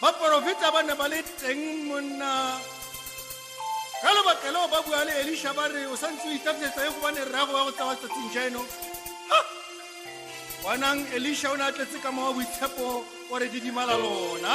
baporofeta ba ne ba le teng monna ka lebaka leo ba bua le elisha ba re o sa ntse o itafetsa e gobane rrago wa go tsawa tsatsing jaeno bonang elisha o ne a tletse ka mowa boitshepo o re didimala lona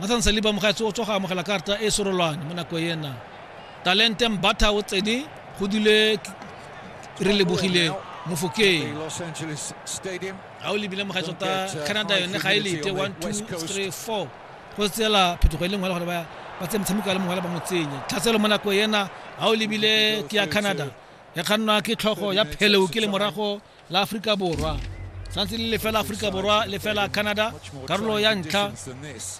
Nathan Saliba mogaetsho o tswa go amogela karta e sorolwane mo nako ena talente mbatha o tsene go dule re lebogile mofokeng ga o lebile mogaetsho ta canada yone ga e lete one two three four go tsela phetogo e le ngwele gore ba ba tse motshameko a le mongwe le bangwe tsenye tlhatselo mo nako ena ga o lebile ke ya canada ya kgannwa ke tlhogo ya pheleo ke le morago la Aforika Borwa santse le lefela Aforika Borwa lefela Canada karolo ya ntlha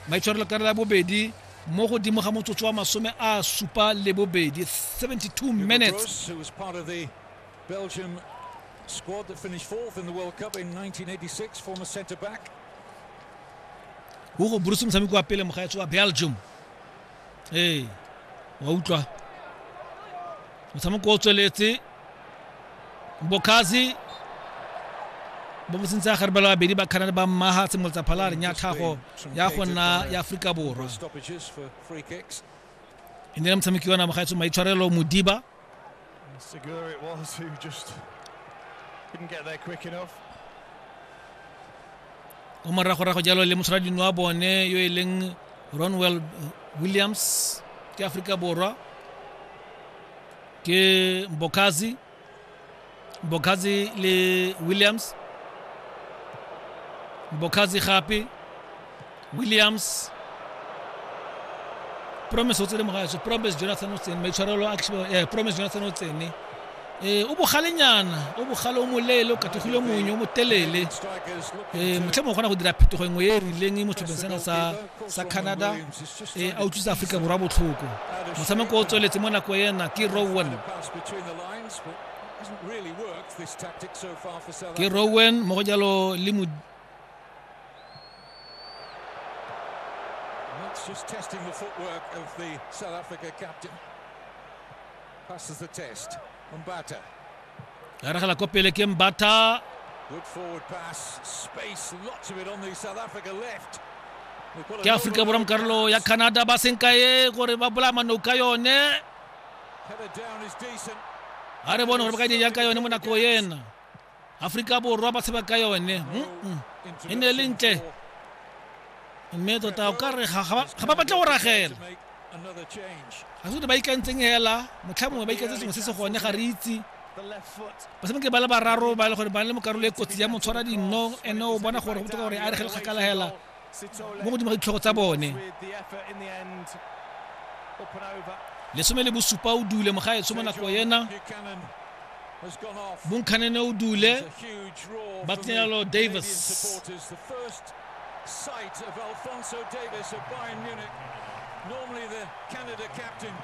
maitshwarelo karolo ya bobedi mo godimo ga motsotso wa masome a supa le bobedi 72 minutes Belgium squad that finished fourth in the World Cup in 1986, former centre back. Hugo Bruce motshameki wa pele mogaetso wa Belgium ee wa utlwa motshameko o tsweletse bokazi bo mo sentse gare bala babedi ba canada ba mmaga tshimolotsa phalareng ya tlhago ya go nna ya aforika borwa e ne le motshameki wa namagaetso maitshwarelo modiba And Segura it was who just didn't get there quick enough. o moragorago jalo le mosharadino wa bone yo e leng ronwell williams ke aforika borwa ke mbokazi mbokhazi le williams mbokhazi gape williams promise o tsene mogaso promise jonathan o tsene maitshwarelo a eh, promise jonathan o tsene eh, o bogalenyana o bogale o moleele o kathogile monye o motelele eh, motlhe mongwe kgona go dira phetogo engwe e e rileng e mo setlhopheng sena sa sa canada eh, a utlwisa aforika borwa botlhoko motshameko o tsweletse mo nako ena ke rowan ke rowen mo go jalo le mo just testing the footwork of the South Africa captain. Passes the test. Mbata. Aragala ko pele ke Mbata. Good forward pass. Space, lots of it on the South Africa left. Ke Afrika Borwa Carlo ya Canada ba senkae gore ba bolama no ka yone. a re bone gore ba ka dija ka yone mo nako ena aforika borwa ba tsheba ka yone e ne e le ntle mme tota o ka re ga ba batle go ragela ga se ba ikantseng hela motlha mongwe ba ikantse sengwe se se gone ga re itse ba semeke ba le bararo ba le gore ba le mo karolo e kotsi ya motshwara dinno ene o bona gore go botoka gore a regele kgakala hela mo godimo ga ditlhogo tsa bone lesome le bosupa o dule mogaetsho mo nako yena bonkhanene o dule ba tsenyalo davis sight of Alfonso Davis of Bayern Munich, normally the Canada captain.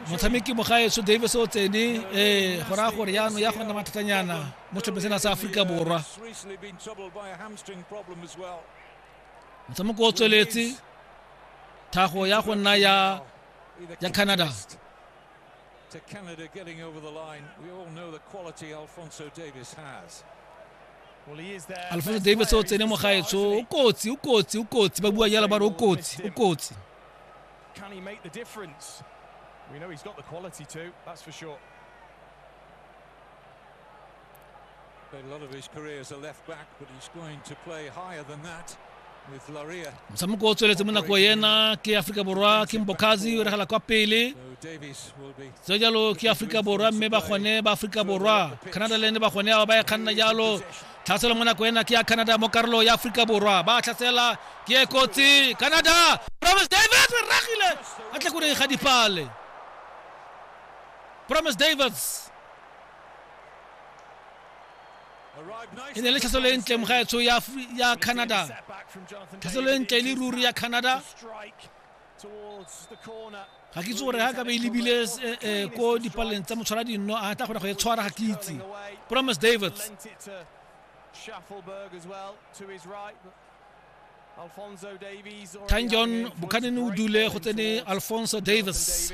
motshameki mogaetso davis o tsene ee go raya gore yaanong ya gonna mathatanyana mo tlhopheng sena sa aforika borwa motshameko o tsweletse thago ya go nna ya ya canada to Canada getting over the line. We all know the quality Alfonso Davis has. alfonso davis o tsene mo gaetsho o kotsi o kotsi o kotsi ba bua jalo ba re o kotsi o kotsi Can he make the difference? We know he's got the quality too, that's for sure. motshameko o tsweletse mo nako ena ke aforika borwa ke mbokazi o regela kwa pele tse jalo ke aforika borwa mme ba gone ba aforika borwa canada le ne ba gone ao ba e kganna jalo tlhaselo mo nako ena ke ya canada mo karolo ya aforika borwa ba tlhasela ke e kotsi canada promise davis re ragile a tle ko ga dipale promise davis e ne le tlhaselo e ntle mogaetsho ya canada tlhaselo e ntle le ruri ya canada ga ke itse gore ga ka be e lebile eh, eh, ko dipaleng tsa motshwara dinno a tla kgona go e tshwara ga ke itse promise davids tanjon bukhanene o dule go tsene alfonso davis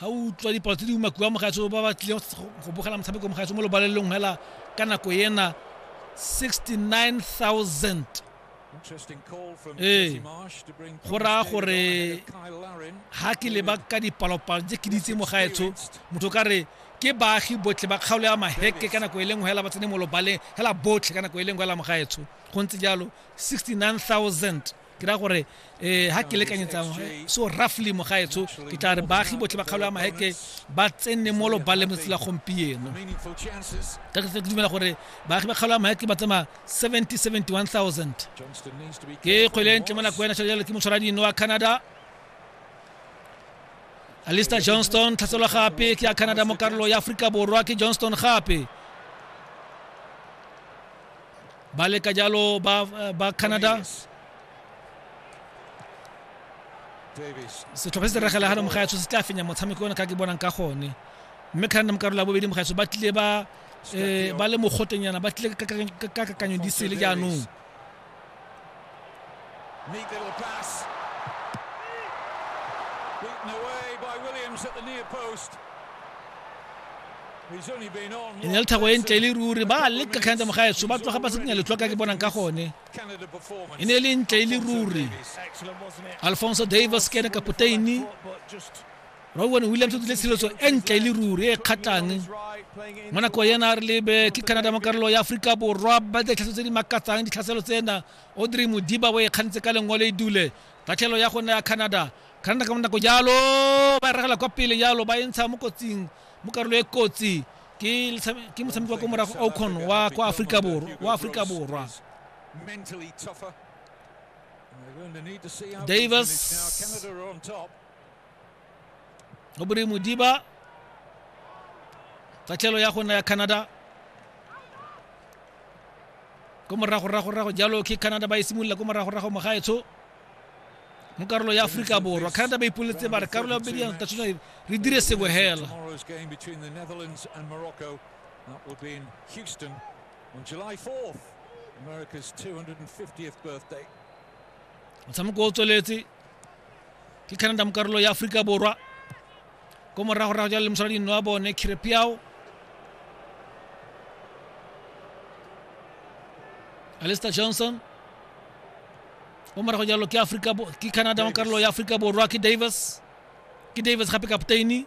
ga o utlwa dipalo tse di umakiwa mogaetso ba ba tlileng go bogela motshameko mogaetso mo lobalelong fela ka nako ena 69000 ee go raya gore ga ke leba ka dipalopalo tse ke ditse mogaetsho motho ka re ke baagi botlhe ba kgaolo ya maheke ka nako e leng fela ba tsene mo lobaleng fela botlhe ka nako e leng fela mogaetsho go ntse jalo 69000 ke ra gore um ga ke lekanyetsang so roughly mogaetsho ke tla re baagi botlhe ba kgaolo ya maeke ba tsene mo lobaleng letsatsi la gompieno ka ke dumela gore baagi ba kgaolo ya maeke ba tsamaya 70 71000 ke kgwele ntle mo nako ya national jalo ke motshwara dino wa canada alister johnston tlhaselwa gape ke ya canada mo karolo ya aforika borwa ke johnston gape ba leka jalo ba ba canada setlhopha se regela ga mogaetsho se tla fenya motshameko one ka ke bonang ka gone mme canada mo karolo ya bobedi mogaetsho ba tlile ba um ba le mogotenyana ba tlile ka kakanyo di sele jaanong Neat little pass. Beaten away by Williams at the near post. He's only been on e ne le thako e ntle e le ruri ba leka kgantsa mogaetso ba tloga ba se kenya letlwa ka ke bonang ka gone Canada performance. e ne e le ntle e le ruri Excellent, wasn't it? alfonso davis ke ene kapoteini But just Roy Wayne Williams o tlile tshireletso e ntle e le ruri e kgatlhang mo nako ena re lebe ke canada mo karolo ya aforika borwa ba ditlhatso tse di makatsang ditlhaselo tsena odrey modiba o e kgantse ka lengwe le e dule tatlhelo ya gona ya canada canada ka bonako jalo ba regela kwa pele jalo ba e ntsha mo kotsing mo karolo e kotsi ke motshameki wa ko morago ocon wa kwa aforika borwa wa aforika borwa davis o bore modiba tatlhelo ya go nna ya canada ko moragoragorago jalo ke canada ba e simolola ko moragorago mogaetsho mo karolo ya aforika borwa canada ba ipoletse ba re karolo ya bobedi ya tatshona re dire sengwe hela That will be in Houston on July 4th, America's 250th birthday. motshameko o tsweletse ke canada mo karolo ya aforika borwa ko moragorago jalo le mosala dino wa bone khirepiao alister johnson o morago jalo ke aforika ke canada mo karolo ya aforika borwa ke davis ke davis gape kapteini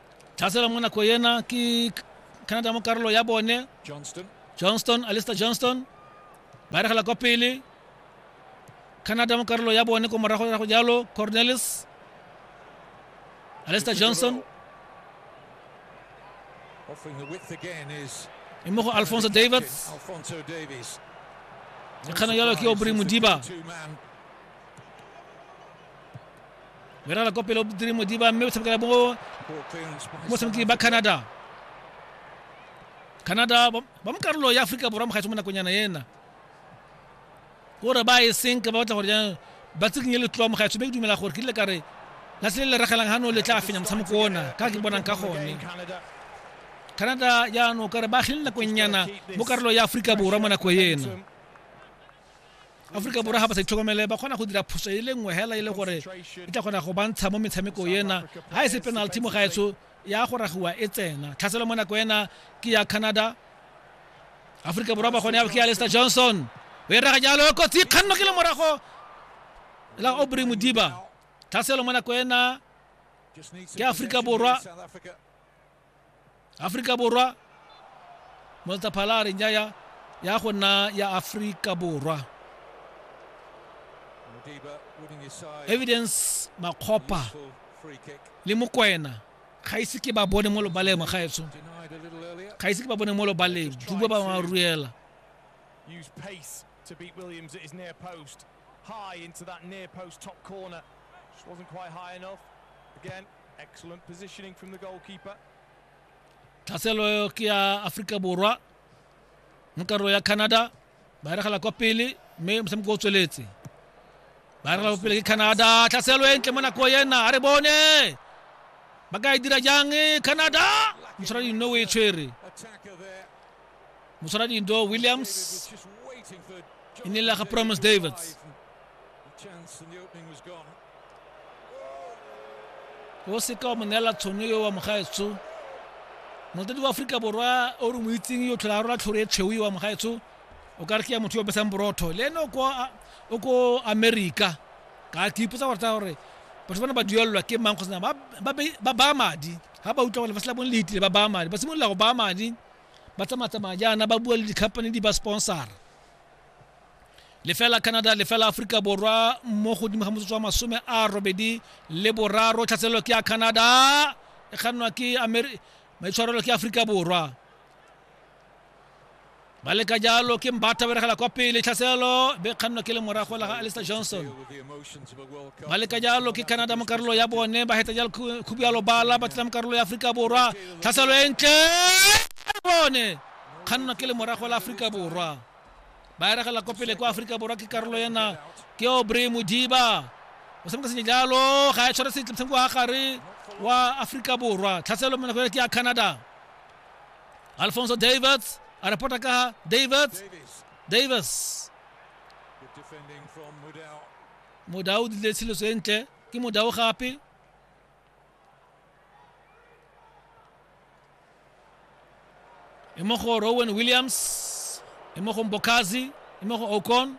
tlhasela mo nako ena ke canada mo karolo ya bone Johnston. johnston alister johnston ba eregela kwa pele canada mo karolo ya bone ko morago ya go jalo cornelis alister johnson Offering the width again is e mo go alfonso davids Alfonso Davies. e kgana jalo ke obri modiba Two man o irala kwa pele o dire modiba mme o tshamekela mo motshameki ba canada canada ba ba mo karolo ya aforika borwa mogaetsho mo nakonyana ena gore ba e senke ba batla gore jaanong ba tsikinye letloa mogaetsho mme ke dumela gore ke dile kare la se le le ragelang gano le tla fenya motshameko ona ka ke bonang ka gone canada jaanong kare ba agile nakonyana mo karolo ya aforika borwa mo nako ena aforika borwa ga ba sa itlhokomele ba kgona go dira phoso e le nngwe hela e le gore e tla kgona go bantsha mo metshameko ena ga e se penalty mo gaetsho ya go ragiwa e tsena tlhaselo mo nako ena ke ya canada aforika borwa ba kgone ya ke ya lester johnson o e raga jalo e kotsi kganno ke le morago la obry modiba tlhaselo mo nako ena ke aforika borwa aforika borwa moltaphala a re nyaya ya go nna ya aforika borwa evidence makgopa le mokwena ga ise ke ba bone mo lobaleng magaetsho ga ise ke ba bone mo lobaleng duba ba ba ruela Use pace to beat Williams at his near post. High into that near post top corner. Just wasn't quite high enough. Again, Excellent positioning from the goalkeeper. tlhaselo ke ya aforika borwa mo karolo ya canada ba eregela kwa pele mme motshameko o tsweletse ba eregela kwa pele ke canada tlhaselo e ntle mo nako ena a re bone ba ka e dira jang canada motshwara dindo o e tshwere Attacker there. motshwara dindo David williams was just waiting for Jonathan Inela ga David Promise to Davids. arrive. The chance and the opening was gone. o seka wa mo neela tshono yo wa mogaetsho motadi wa aforika borwa o re mo itseng yo tlhola rola tlhoro e tshweu yo wa mogaetsho o ka re ke ya motho yo besang borotho le ene o ko america ka ke ipotsa gore tsa gore batho bana ba duelelwa ke mang kgotsa ba baya madi ga ba utlwa gore ba sela bone le itile ba baya madi ba simolola go baya madi ba tsamaya tsamaya jaana ba bua le di-company di ba sponsora lefela canada lefela aforika borwa mo godimo ga motsotso wa masome a robedi le boraro tlhatselelo ke ya canada e kgannwa ke maitshwarelo ke aforika borwa ba leka jalo ke mbatha beregela kwa pele tlhaselelo be kgannwa ke le morago la ga alister johnson ba leka jalo ke canada mo karolo ya bone ba heta jalo khubu ya lobala ba tlela mo karolo ya aforika borwa tlhaselelo e ntle bone kgannwa ke le morago la aforika borwa ba eregela ko pele kwa aforika borwa ke karolo ena ke obrey modiba o tshameka senye jalo ga e tshware sentle motshameko wa gare wa aforika borwa tlhaselo monako ke ya canada alfonso davids a repota ka davids davis modao o dile tshiletso e ntle ke modao gape e mo go rowan williams e mo go mbokazi e mo go ocon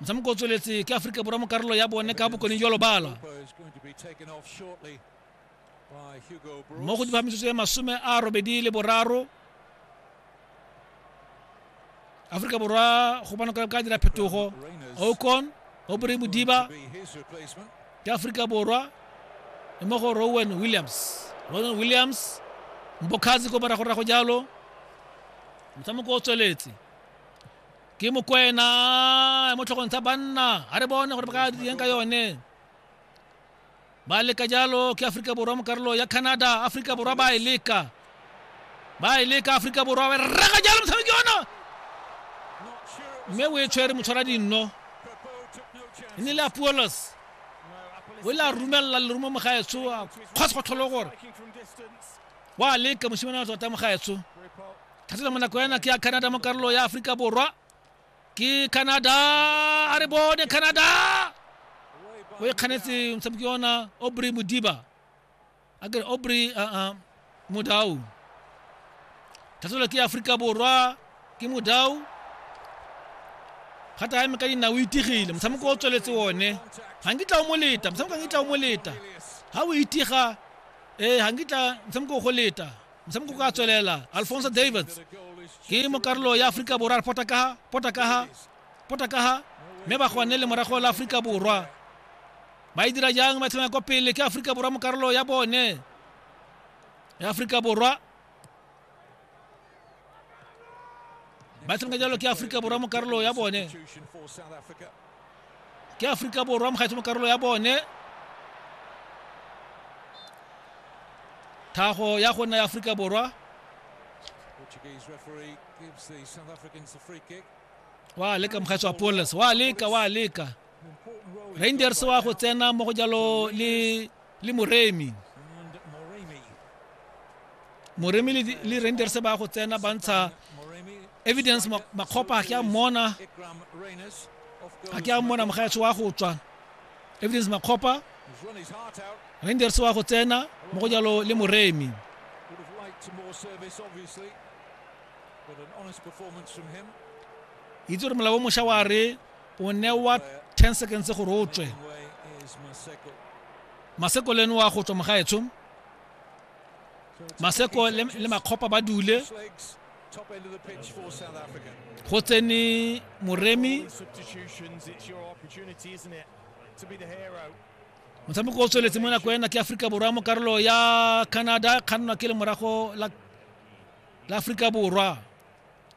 motshameko o tsweletse ke aforika borwa mo karolo ya bone ka bokone jwa lobala Opa is going to be taken off shortly. by Hugo mo Broos. godimo ga metsotso e masome a robedi le boraro aforika borwa go bona ka ka dira phetogo Reyners ocon o bore modiba to be his replacement. ke aforika borwa e mo go rowan williams rowan williams mbokgatsi ko morago rago jalo motshameko o tsweletse ke mokwena mo tlhogong tsa banna a re bone gore ba ka direng ka yone ba leka jalo ke aforika borwa mo karolo ya canada aforika borwa ba e leka ba e leka aforika borwa ba rega jalo motshameki ona mme o e tshwere motshwara dinno e ne le apuolos o ile a rumelela lerumo mogaetsho a kgwase go tlholo gore wa leka mosimane wa tota mogaetsho thatela monako yana ke ya canada mo karolo ya aforika borwa ke canada a re bone canada o e kganetse motshameki ona aubrey modiba a kere aubrey aa modau tlhatlhola ke aforika borwa ke modau gata ya me ka dinao o itigile motshameko o tsweletse one ga nkitla o mo leta motshameko ga nkitla o mo leta ga o itiga ee ga nkitla motshameko o go leta motshameko ka tswelela alfonso davids ke mokarolo ya aforika borwa re pota kaga pota kaga pota kaga mme ba gone le morago la aforika borwa ba e dira jang ba tlhomya kwa pele ke aforika borwa mo karolo ya bone ya aforika borwa ba tshameka jalo ke aforika borwa mo karolo ya bone ke aforika borwa mogaetso mo karolo ya bone thago ya go nna ya aforika borwa wa leka mogaetso wa poles wa leka wa leka rangers wa go tsena mo go jalo le le moremi moremi le rangers ba go tsena ba ntsha evidence makgopa ga ke a mmona ga ke a mmona mogaetsho wa go tswa evidence makgopa rangers wa go tsena mo go jalo le moremi itse gore molao o mošwa wa re o newa 10 seconds gore o tswe maseko le ene wa go tswa mogaetsho maseko le makgopa ba dule go tsene moremi motshameko o tsweletse mo nako ena ke aforika borwa mo karolo ya canada kgannwa ke le morago la aforika borwa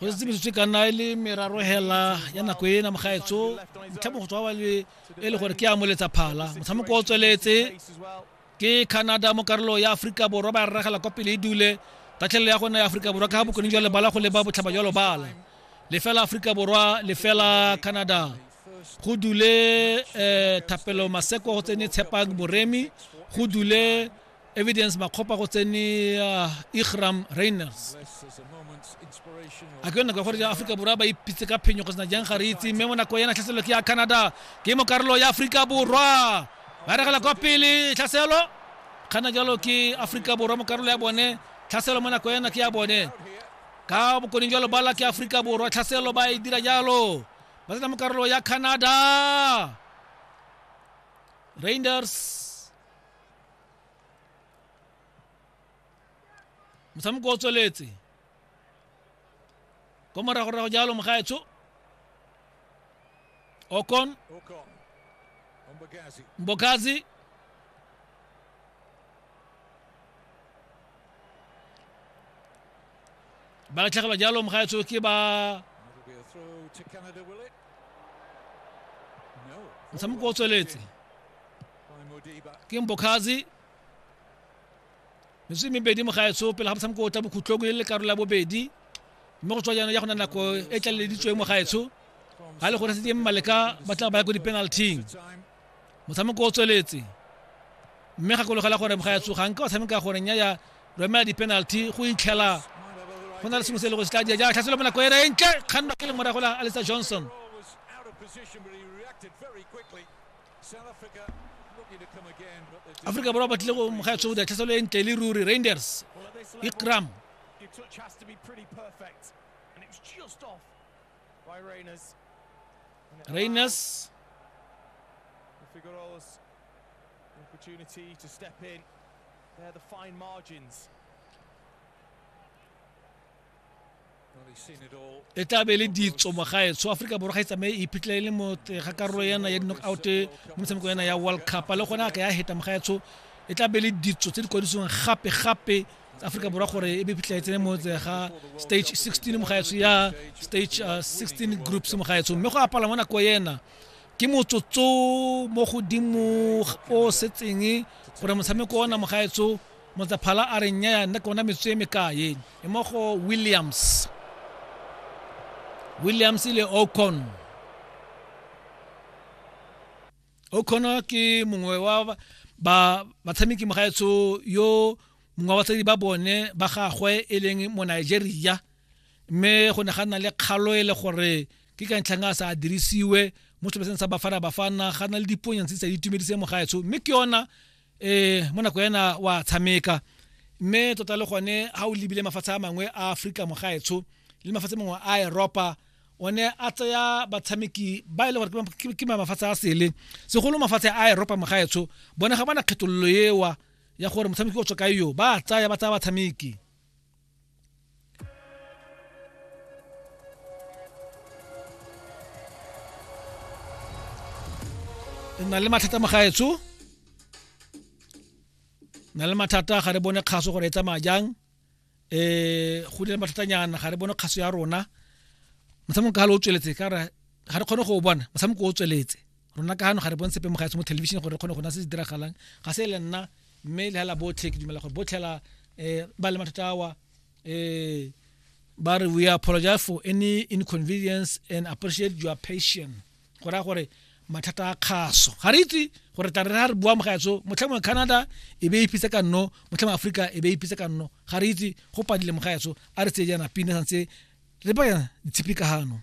go setse metsotso e ka nna e le meraro hela ya nako e na mogaetso motlhamo go tswa wa le e le gore ke a moletsa phala motshameko o tsweletse ke canada mo karolo ya aforika borwa ba ragela kwa pele e dule tatlhelelo ya gona ya aforika borwa ka ga bokone jwa lebala go leba botlhaba jwa lobala lefela aforika borwa lefela canada go dule um thapelo maseko go tsene tshepang boremi go dule evidence makgopa go tsene uh, igram rainers a ke nako ya gore aforika borwa ba ipitse ka phenyo go sena jang ga re itse mme mo nako yana tlhaselo ke ya canada ke mo karolo ya aforika borwa ba regela kwa pele tlhaselo kgana jalo ke aforika borwa mo karolo ya bone tlhaselo mo nako yana ke ya bone ka bokoning jalo bala ke aforika borwa tlhaselo ba e dira jalo ba tsena mo karolo ya canada rangers motshameko o tsweletse ko moragorago jalo mogaetsho okon Okon. Umbagazi. mbokazi ba latlhegelwa jalo mogaetsho ke ba That'll be a throw to Canada, will it? No. motshameko o tsweletse ke mbokazi metsotso e mebedi mo gaetsho pele ga motshameko o tla bokhutlong e le karolo ya bobedi mme go tswa jaanong ya go na nako e tlaleleditsweng mo gaetsho ga le gore sedie mmaleka ba tla ba ya ko di-penalting motshameko o tsweletse mme gakologela gore mogaetsho ga nka wa tshameka gore nya ya romela di-penalty go itlhela go na le sengwe se e le go se tla dia ja tlhatselo mo nako ena e ntle kgannwa ke le morago la alisa johnson aforika borwa ba tlile go moga ya tshwebo diatlhaselo e ntle le ruri rangers ikram Rangers opportunity to step in. They're the fine margins. e tla be e le ditso mo gae so aforika borwa ga e tsamaye e iphitlhela e le mo ga karolo yana ya di-knock out mo metshamekong yana ya world cup le gone a ka ya heta mo gaetsho e tla be e le ditso tse di kwadisiwang gape-gape aforika borwa gore e be phitlhela e tsene mo ga stage 16 mo gaetsho ya stage 16 uh, groups mo gaetsho mme go apala mo nako ena ke motsotso mo godimo o setseng gore motshameko ona mo gaetsho Motsaphala a re nnyaya nna ke bona metso e mekae e mo go Williams. Williams le Ocon. Ocon ke mongwe wa ba batshameki mogaetsho yo mongwe wa batsadi ba bone ba gagwe e leng mo Nigeria mme go ne ga nna le kgalo e le gore ke ka ntlhang a sa dirisiwe mo setlhopheng sa Bafana Bafana ga na le diponyantse tsa itumedise mogaetsho mme ke yona eh mo nako ena wa tshameka mme tota le gone ha o lebile mafatshe a mangwe a Afrika mogaetsho le mafatshe mangwe a Europa o ne a tsaya batshameki ba e le gore ke mafatshe a sele segolo mafatshe a Europa mogaetsho bone ga bana kgethololo ewa ya gore motshameki o tswa ka yo ba tsaya ba tsaya batshameki na le mathata magaetsho na le mathata ga re bone kgaso gore e tsamaya jang um go dile mathatanyana ga re bone kgaso ya rona motshameko ka gale o tsweletse ka re ga re kgone go o bona motshameko o tsweletse rona ka gano ga re bone sepe mo gaetsho mo television gore re kgone go na se se diragalang ga se le nna mme le hela botlhe ke dumela gore botlhela um eh, ba le mathata awa um ba re we apologize for any inconvenience and appreciate your patient go raya gore mathata a kgaso ga re itse gore tla re re ga re bua mogaetso motlhang wa canada e be e ipitse ka nno motlhang wa aforika e be e ipitse ka nno ga re itse go padile mogaetso a re tseye jaana pina santse re ba ditshipi ka gano